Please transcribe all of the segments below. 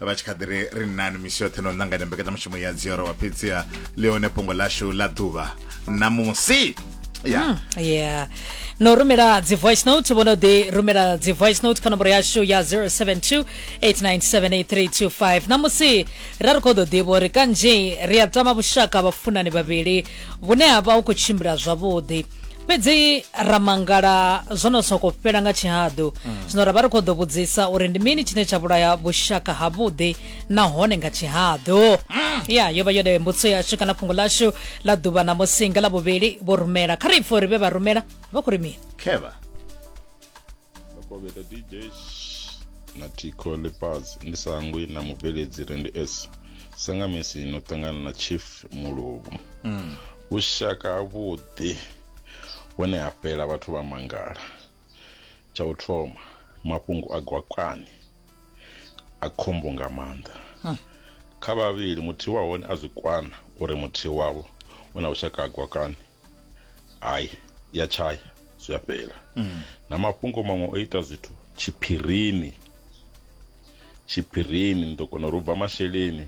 vha tshi kha ḓi ri ri nani misi yoṱhe no ṋanganya mbekanyamushumo ya dzioro wa fhedziha ḽi hone fhungo ḽashu ḽa ḓuvha ṋamusi ya hmm, yeah no rumela dzi voice note vho no ḓi rumela dzi voice note kha nomboro yashu ya 072 8978325 ṋamusi ra ri khou ḓo ḓivha uri kanzhi ri a tama vhushaka vhafunani vhavhili vhune ha vha hu khou tshimbila zwavhuḓi fhedzi ra mangala zwo no soko fhela nga tshihaḓu mm. zwino ra vha ri khou ḓo vhudzisa uri ndi mini tshine tsha vhulaya vhushaka ha vhuḓi nahone nga tshihaḓu mm. ya yo vha yone mbudziso yashu kana fhungo lashu ḽa ḓuvha na musinga ḽa vhuvhili vho rumela kha ri pfhe uri vhe vha rumela vha khou ri mini khevha Bakobeta DJ na Tico Lepaz ndi sangwi na mubveledzi Randy S sangamisi no ṱangana na Chief Muluvhu mm. vhushaka havhuḓi hone ha fhela vhathu vha mangala tsha u thoma mafhungo a gwakani a khombo nga maanḓa hmm. kha vhavhili muthihi wa hone a zwi kwana uri muthihi wavho u na vhushaka ha gwakani hayi ya tshaya zwi a fhela mm. na mafhungo maṅwe o ita zwithu tshiphirini tshiphirini ni ḓo kona uri u bva masheleni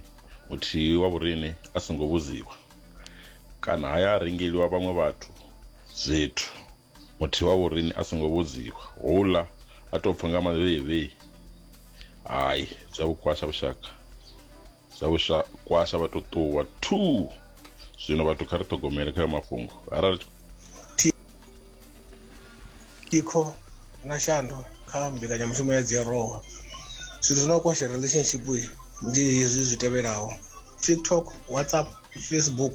muthihi wa vhuriṋe a songo vhudziwa kana haya a rengeliwa vhaṅwe vhathu zwithu muthihi wa vhuriṋe a songo vhudziwa houḽa a tou pfha nga mavheivhei hayi zwa vhukwasha vhushaka sa vhusha kwasha vha tou ṱuwa two zwino vhathu kha ri ṱhogomele kha mafhungo arali thikho na shando kha mbekanyamushumo ya dziarowa zwithu zwi no kwasha relationship ndi hezwi zwi tevhelaho tiktok whatsapp facebook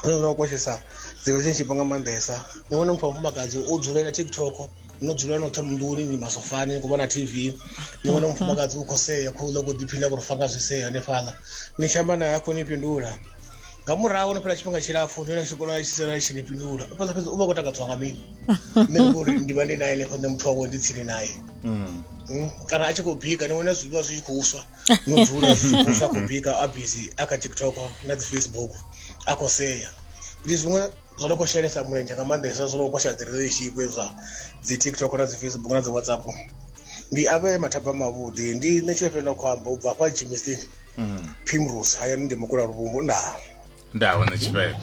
hune no koshesa dzi relationship nga maanḓesa ni vhone muthu wa mufumakadzi o dzulela tiktok no dzula no thoma nḓuni ni masofani ku vhona tv ni vhona mufumakadzi u khou sea khou ḽa khou ḓiphina khou fanga zwi sea hanefhaḽa ni tshi amba naye a khou ni fhindula nga murahu no fhela tshifhinga tshilapfu ni na tshikolo tshi sala tshi ni fhindula u fhedza fhedza u vha khou takadziwa nga mini nṋe ndi uri ndi vha ndi naye hanefho nṋe muthu wawe ndi tsini naye Mm. Mm, kana a tshi khou bika ni vhona zwiḽiwa zwi tshi khou swa no dzula zwa khou bika a busy a kha tiktok na dzi facebook a khou sea ndi zwiṅwe zwo no khou shelesa mulenzhe nga maanḓesa zwo no khou sha dzi relationship zwa dzi tiktok na dzi facebook na dzi whatsapp ndi avhe mathaba mavhuḓi ndi nṋe tshifhe fhela khou amba u bva hafha tshimisini mm. primrose hayani ndi mukula luvhumbu ndaa nda hone tshifhela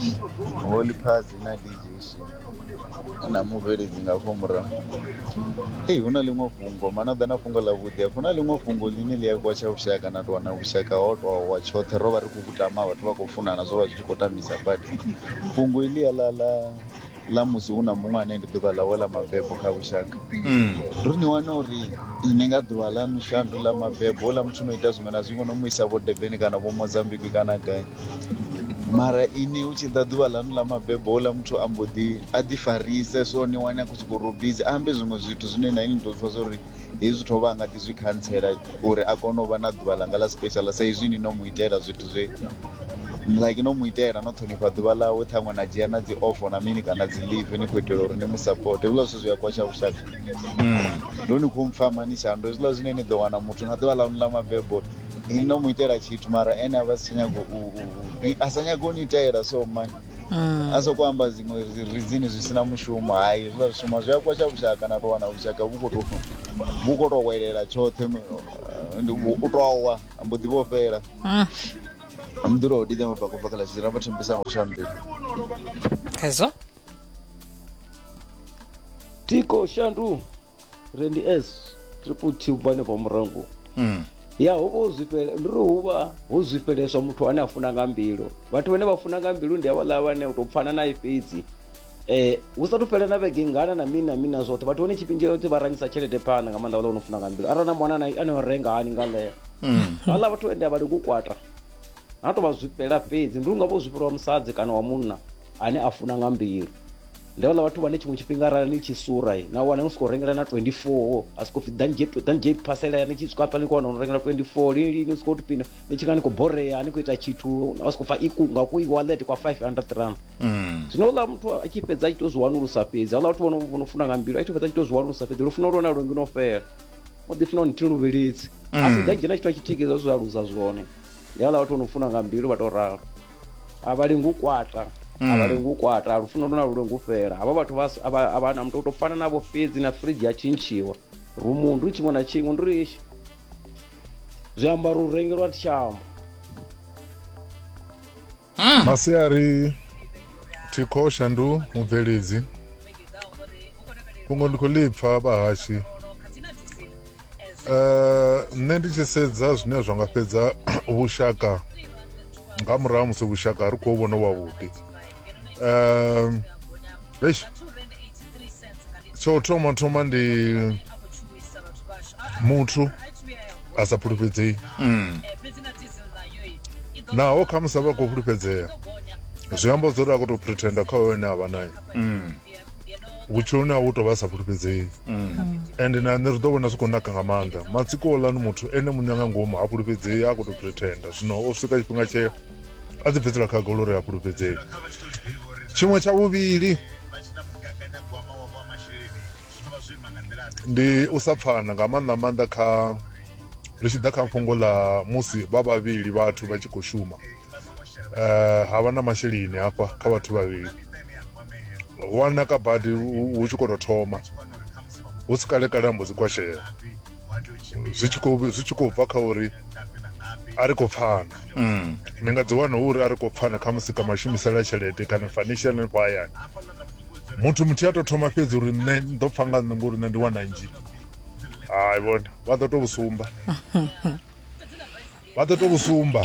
holy phazi na dj shin na mubveledzi nga fho murahu ei hu na ḽiṅwe fhungo mana ḓa na fhungo ḽa vhuḓi hu na ḽiṅwe fhungo ḽine ḽi a kwatsha vhushaka na tou wana vhushaka ho tou wa tshoṱhe ro vha ri khou gudama vhathu vha khou funana zwo vha zwi tshi khou tambisa badi fhungo iḽi ya ḽa ḽa ḽa musi hu na muṅwe ane ndi ḓuvha ḽawe ḽa mabebo kha lushaka ri ni wana uri ni nga ḓuvha ḽa mishandu ḽa mabebo houḽa muthu no ita zwiṅwe na zwiṅwe no mu isa vho deveni kana vho mozambiki kana gai mara ini hu tshi ḓa ḓuvha ḽanu ḽa mabebo houḽa muthu a mbo ḓi a ḓi farise so ni wane a khou sokou robizi ambe zwiṅwe zwithu zwine na ini ni tou pfha zwa uri hezwi zwithu o vha a nga ḓi zwi khantsela uri a kone u vha na ḓuvha ḽanga ḽa special sa izwi ni no mu itela zwithu zwe like no mu itela no ṱhonifha ḓuvha ḽawe ṱhaṅwe na dzhia na dzi ofo na mini kana dzi live ni khou itela uri ni mu support hezwiḽa zwithu zwi a kwasha vhushaka hmm. ndo ni khou mpfama ni shando hezwiḽa zwine ni ḓo wana muthu na ḓuvha ḽanu ḽa mabebo ni no mu itela tshithu mara ene a vha si tsha nyago a sa nyago u ni itela so mani Mm. a sokou amba zwiṅwe zwi- rizini zwi sina mushumo hai zwi vha zwi shuma zwi a kwasha vhushaka na tou wana vhushaka vhu khou tou vhu khou tou welela tshoṱhe eh, ndi u u tou wa a mbo ḓi vho fhela Mm. mḓura o didza mabaka u bva kha ḽa tshizira vha thembisa ngo shambela Khezwo? tiko shandu rendi s triple t vhane vha murango Mm. ya ho vha ho zwifhele ndi ri hu vha ho zwifheleswa muthu ane a funa nga mbilu vhathu vhane vha funa nga mbilu ndi havhaḽa vhane u tou pfana naye fhedzi um hu sa tou fhela na vhege ngana na mini na mini na zwoṱhe vhathu vhane tshifhinga tshoṱhe vha rangisa tshelede phanḓa nga maanḓa vhaḽa vho no funa nga mbilu arali na mwana naye ane o renga hani nga ḽeyo Mm. havhaḽa vhathu ende a vha lengi u kwata ha tou vha zwifhela fhedzi ndi unga vho zwifhelwa musadzi kana wa munna ane a funa nga mbilu ndi vhaḽa vhathu vhane tshiṅwe tshifhinga arali ni tshi sura na wana ni sokou rengela na 24 a sokou pfi dan j phasela ni tshi swika hafha ni khou wana no rengela 24 lini lini ni sokou tupina ni tshi nga ni khou borea ni khou ita tshithu a sokou pfa ikunga ku iwallet kwa 500 rand mm. zwino uḽa muthu a tshi fhedza a tshi tou zwi wanulusa fhedzi aḽa vhathu vho no funa nga mbilu a tshi fhedza a tshi tou zwi wanulusa fhedzi lufuno lwone lwo ngino fhela o ḓi funa nithihi luvhilidzi a si mm. dan j na tshithu a tshi thikeza zwi aluza zwone ndi aḽa vhathu vho no funa nga mbilu vha tou ralo a vha lengi u kwata a vha mm. lengi u kwata lufuno luna lu lengi u fhela havha vhathu vha na mutou fana navho fhedzi na fridge ya tshintshiwa rumu ndi tshiṅwe na tshiṅwe ndi ri zwiambaro u rengelwa tshiamba mm. masiari thikho shandu mubveledzi fhungo ndi khou ḽi pfa vhahashi Eh, nṋe ndi tshi sedza zwine zwa nga fhedza vhushaka nga murahu ha musi vhushaka ri khou vhona wavhuḓi um eish tsho u thoma thoma ndi muthu a sa fhulufhedzei naho khamusi a vha khou fhulufhedzea zwi amba zwori a khou tou pretenda kha hoyo ane a vha naye vhutshiloni ha u tou vha sa fhulufhedzei ende na nṋe zwi ḓo vhona zwi khou naka nga maanḓa matsiko olani muthu ene muṋe nga ngomu ha fhulufhedzei a khou tou pretenda zwino o swika tshifhinga tshee a ḓi bvisela khagolo uri a fhulufhedzei tshiṅwe tsha vhuvhili ndi u sa pfana nga maanḓa maanḓa kha ri tshi ḓa kha fhungo ḽa musi vha vhavhili vhathu vha tshi khou shuma eh, ha vha na masheleni hafha kha vhathu vhavhili wana ka badi hu tshi khou tou thoma hu si kale kale ambo dzi kwashela zwi tshi khou bva kha uri a ri khou pfana mm. ni nga dzi wana uri a ri khou pfana kha musi ka mashumisela tshelede kana financial hanefho hayani muthu muthihi a tou thoma fhedzi uri nṋe ndo pfa nga nṋe ngori nṋe ndi wana nzhi hai vhone vha ḓo tou sumba vha ḓo to sumba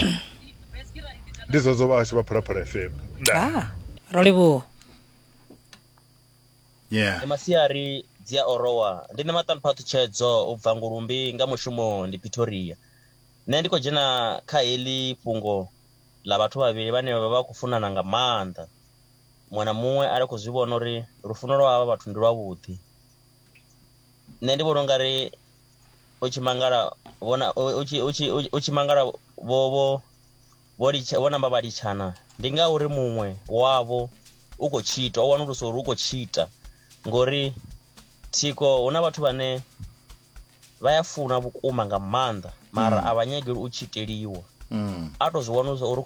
ndi zwodzo vhahashu vha phalaphala fm ah, ro livhuwa yeah. masiari dzi a orowa ndi nṋe maṱanupha ṱhutshedzo u bva ngulumbi nga mushumo ndi pretoria nṋe ndi khou dzhena kha heḽi fhungo ḽa vhathu vhavhili vhane vha vha khou funana nga maanḓa muṅwe na muṅwe a ri khou zwi vhona uri lufuno lwa havha vhathu ndi lwavhuḓi nṋe ndi vhona ungari u tshi mangala vhona u tshi u tshi u tshi mangala vho vho vho litsha vho namba vha litshana ndi ngauri muṅwe wavho u khou tshita u wanulusa uri u khou tshita ngori thiko hu na vhathu vhane vha ya funa vhukuma nga maanḓa mara mm. a vha nyageli u tshiteliwa mm. a tou zwi wanulusa uri u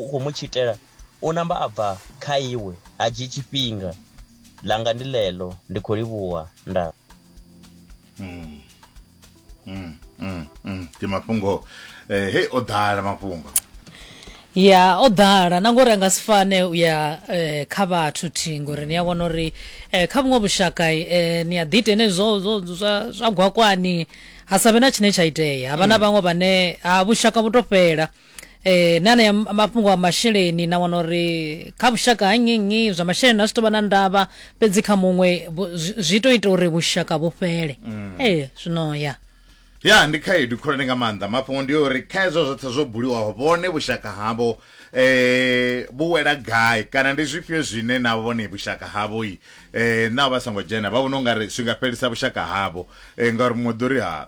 khou mu tshitela U namba a bva kha iwe, a dzhii tshifhinga. Ḽanga ndi ḽeḽo, ndi khou livhuwa. Nda. Ndi mafhungo. Hei, o ḓala mafhungo. Ya, o ḓala. Na ngori a nga si fane u ya kha vhathu thi, ngori ni a vhona uri kha vhuṅwe vhushaka ni a ḓi ita henezwi zwa, zwa, zwa, zwa gwakwani, ha sa vhe na tshine tsha itea. Ha vha na vhaṅwe vhane, ha, vhushaka vhu tou fhela. eh, na anea m- mafhungo a masheleni na wana uri kha vhushaka ha nnyi nnyi zwa masheleni a zwi tovha na ndavha fhedzi kha muṅwe vhu- zwi- zwi to ita uri vhushaka vhu fhele ee zwino ya ya ndi khaedu khulwane nga maanḓa mafhungo ndi uri kha hezwo zwoṱhe zwo buliwaho vhone vhushaka havho eh vhu wela gai kana ndi zwifhio zwine na vhone vhushaka havho i eh na vha songo dzhena vha vhona ungari zwi nga fhelisa vhushaka havho eh ngauri muṅwe ḓo ri ha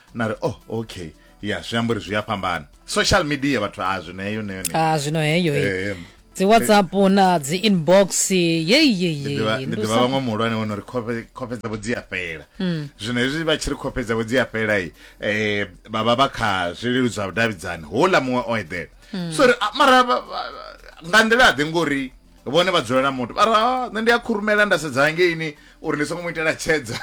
na ri oh okay ya zwi amba uri zwi a fhambana social media vhathu a zwino heyo neyo neyo a zwino heyo eh, dzi whatsapp na dzi inbox yeyeyendi ḓivha vhaṅwe muhulwane wo no ri khofhe dzavho dzi a fhela hmm. zwino hezwi vha tshi ri khofhe dzavho dzi a fhela i um vha vha vha kha zwilelu zwa vhudavhidzani houḽa muṅwe o eḓela hmm. so ri mara nga nḓila ḓe ngori vhone vha dzulela muthu vha ra "Ah, nṋe ndi a khurumela nda sedza hangeini uri ndi songo mu itela tshedza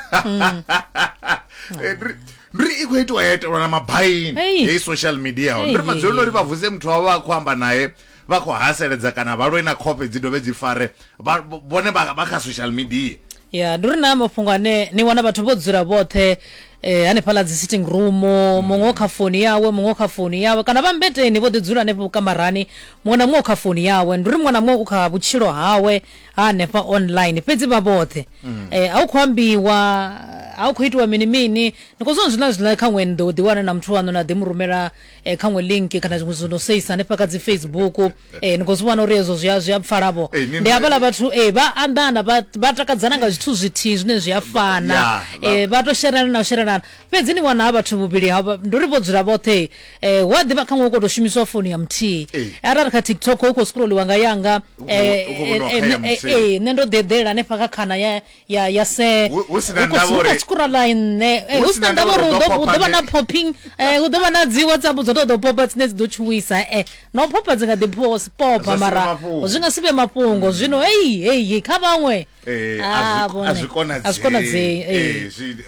Eh, ndri- ndri i khou itiwa ya itelwa na mabaini Ei. heyi social media Ei, ndri ei, madzuloni uri ei. vha vuse muthu wavho vha khou amba naye vha khou haseledza kana vha lwe na khofhe dzi dovhe dzi fare vha- vhone vha vha kha social media ya ndi uri na mafhungo ane ni wana vhathu vho dzula vhoṱhe eh, hanefhaḽa dzi sitting room muṅwe o kha foni yawe muṅwe o kha foni yawe kana vha mbeteni vho ḓi dzula hanefho vhukamarani muṅwe na muṅwe o kha foni yawe ndi uri muṅwe na muṅwe u kha vhutshilo hawe ha hanefha online fhedzi vha vhoṱhe eh, a u khou ambiwa a u khou itiwa mini mini ni khou zwana zwiḽa zwiḽa kha ṅwe ni ḓo ḓiwana na muthu waṋu na ḓi mu rumela eh, kha ṅwe link kana zwiṅwe zwino seisa hanefha kha dzi facebook ee ni khou zwi vhona uri hezwo zwi a zwi a pfala vho Ee, ni- ndi hafhaḽa vhathu ee vha anḓana vha vha takadzana nga zwithu zwithihi zwine zwi a fana Ya, vha- ee vha to sherelana na u sherelana fhedzi ni wana ha vhathu vhuvhili ha vha- ndi uri vho dzula vhoṱhe ee hu a ḓivha khaṅwe hu khou tou shumisiwa founu ya muthihi Ee. arali kha tiktok hu khou scrolliwa nga yanga Hu khou- hu khou vhoniwa kha ya muthihi. ee nṋe ndo ḓi eḓela hanefha kha khana ya ya ya se hu si na ndavha uri tshi kura line ne eh, hu si na ndavha uri hu ḓo vha na popping eh, hu ḓo vha na dzi whatsapp dzo tou ḓo popa dzine dzi ḓo tshuwisa eh no popa dzi nga ḓi pho popa mara zwi nga si vhe mafhungo mm. zwino heyi heyi kha vhaṅwe eh, ah, a zwi konadzei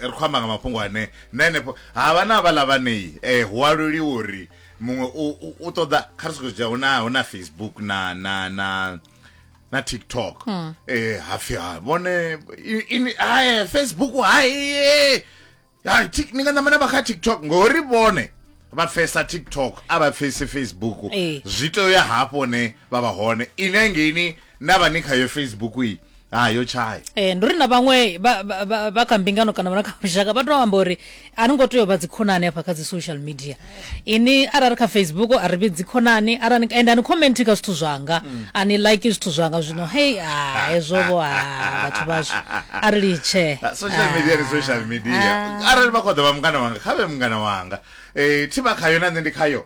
ri khou amba nga mafhungo ane na henefho ha vha na vhaḽa vhanei um hu aluliwa uri muṅwe u ṱoḓa kha ri sokou dzhia hu na facebook na na na na tiktok mm. eh, hapfi ha vhone i- ini- hae facebook haye Ha, tik- ni nga namana vha kha tiktok ngori vhone vha pfesa tiktok a vha pfesi facebook Eh. zwi tea uya hafho hone vha vha hone ine ngeini na vha ni khayo facebook iyi ha yo tshaya Eh, ndi uri na vhaṅwe vha- vha vha- vha kha mbingano kana vha na kha lushaka vha to amba uri a ri ngo tea u vha dzikhonani hafha kha dzi social media ini arali kha facebook a ri vhi dzikhonani arali and ani comment kha zwithu zwanga mm. ani like zwithu zwanga zwino hey ah hezwo vho ha ah, vhathu vhashu a ri litshe ah, social media ni social media ah. arali vha khoḓa vha mungana wanga kha vhe mungana wanga eh thi vha khayo na nṋe ndi khayo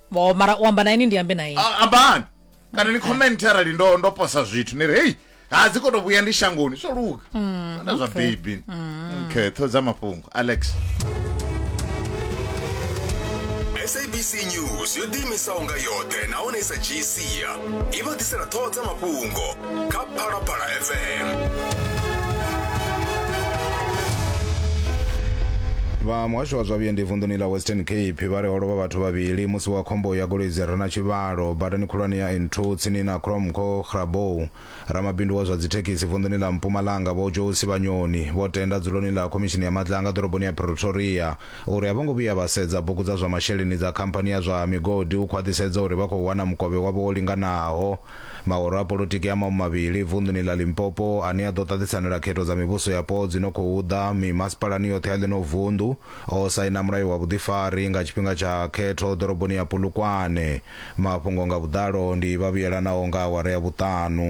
Vho, mara u amba na ini ndi ambe na ini A- ambani kana ni comment arali ndo ndo posa zwithu ni ri hei ha dzi koto vhuya ndi shangoni zwo luga na zwa baby okay ṱho dza mafhungo alex sabc news yo ḓiimisaho nga yoṱhe nahone i sa dzhiisia i vha ḓisela ṱhoho dza mafhungo kha phalaphala fm vha muhasho wa zwa vhuendi vunḓuni ḽa western cape vha ri ho lovha vhathu vhavhili musi wa khombo ya goloi dzi re na tshivhalo badani khulwane ya n2 tsini na cromco grabou ramabindu wa zwa dzithekhisi vunḓuni ḽa mpumalanga vho joe sivhanyoni vho tenda dzuloni ḽa khomishini ya matlanga ḓoroboni ya pretoria uri a vho ngo vhuya vha sedza bugu dza zwa masheleni dza khamphani ya zwa migodi u khwaṱhisedza uri vha khou wana mukovhe wavho wo linganaho Mahoro a polotiki a maṅwe mavhili vunḓuni ḽa Limpopo ane a ḓo ṱaṱisanela khetho dza mivhuso yapo dzi no khou ḓa mimasipalani yoṱhe ya ḽino vunḓu o saina mulayo wa vhuḓifari nga tshifhinga tsha khetho ḓoroboni ya Polokwane. Mafhungo nga vhuḓalo ndi Vhavhuyelanaho nga awara ya vhuṱanu.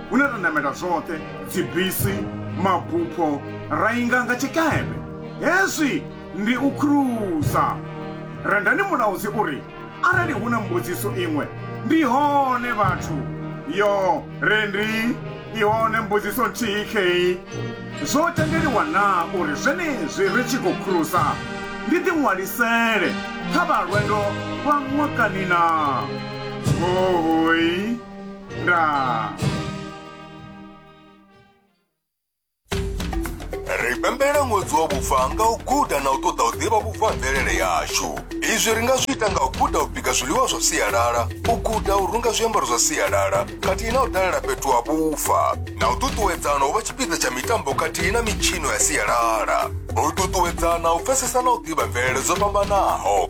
hune ra namela zwoṱhe dzibisi mabupho ra inga nga tshikepe hezwi ndi u khruza rendani mulaudzi uri arali hu na mbudziso iṅwe ndi hone vhathu yo rendi i hone mbudziso nthihi kheyi zwo tendeliwa na uri zwenezwi ri tshi khou khruza ndi ḓiṅwalisele kha vha lwendo lwa ṅwakanina hohoi Ra. ri pembela ṅwedzi wa vhufa nga u guda na u ṱoḓa u ḓivha vhufa ha mvelele yashu izwi ri nga zwi ita nga u guda u bika zwiḽiwa zwa sialala u guda u runga zwiambaro zwa sialala khathihi na u dalela fhethu ha vhufa na u ṱuṱuwedzana u vha tshipiḓa tsha mitambo khathihi na mitshino ya sialala u ṱuṱuwedzana u pfesesa na u ḓivha mvelele dzo fhambanaho